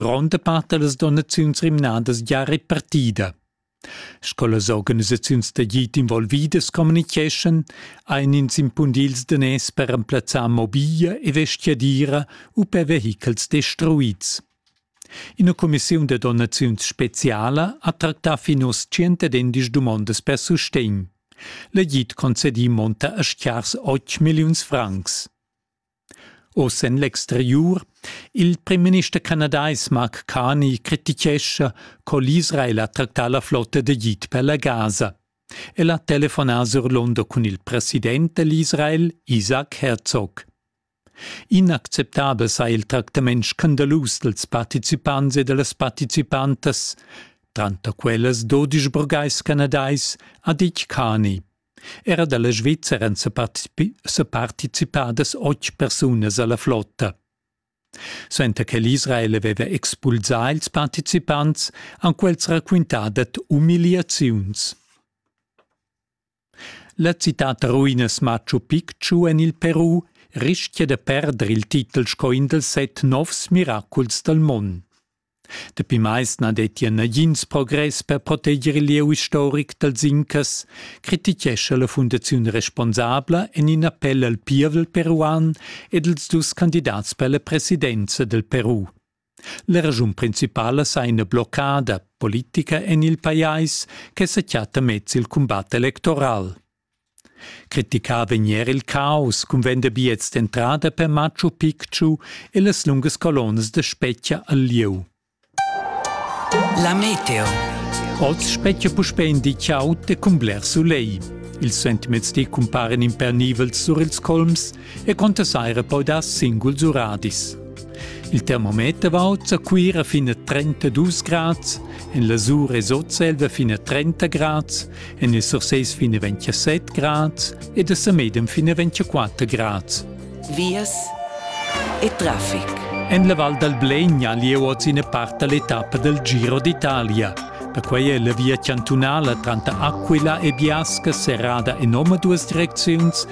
Gronda part da las donaziuns rimnadas gia repartida. Sco las organisaziuns d'agid involvidas communitgeschan, ein ins impundils daners per remplazzar mobiglia e vestiadira u per vehichels destruids. Ina commissiun da donaziuns speciala ha tractà fin oz 110 dumondas per sustegn. L'agid concedì monta a schiars 8 milliuns francs. Oz en l'exteriur. Il primminister canadais Mark Carney crititgescha co l'Israel ha tractà la flotta d'Egid per la Gaza. El ha telefonà sur London cun il president dell'Israel, Isaac Herzog. Inacceptabel sei il tractament scandalus dels participants e dellas participantas. Tranter quellas dodisch burgais canadais ha ditg Carney. Era dalla Svizra èn separticipadas otg persunas alla flotta. Suenter che l'Israel aveva expulsà ils participants, han quels raquintà dad umiliaziuns. La citad da ruinas Machu Picchu en il Peru rischia da perder il titel sco in dals set novs miraculs dal mund. Dapi mais na dettia nagins progress per proteger il lieu istoric dal Zinchas, crititgescha la fundaziun responsabla en in appell al pievel peruan ed als dus candidats per la presidenza del Peru. La raschun principala sa ina bloccada politica en il pajais che sa chatta mez il cumbat electoral. Criticà vegn er il caus cun vender biets d'entrada per Machu Picchu e las lungas colonnas da spetga al lieu. La meteo. Oz spetga puspè in di chaud e cun bler sulegl. Ils sentiments ti cumparen impernivels sur ils colms e contessaira poi dar singuls uradis. Il termometer va oz a Cuira fin a 32 grads, en la Sur e Sotselva fin a 30 grads, en il Surseis fin a 27 grads ed a Samedem fin a 24 grads. Vias e traffic. En la Val dal Blegna lieu oz ina part dall'etappa dal Giro d'Italia. Da quei è la via chantunala tranter Aquila e Biasca serrada in omaduas direcziuns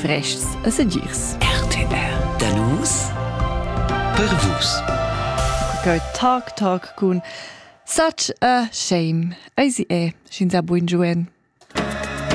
Frestgs e sedirs. RTR Da nus per vus. Go tac tac cun such a shame. Eisi è, sch'ins ha buin giuen.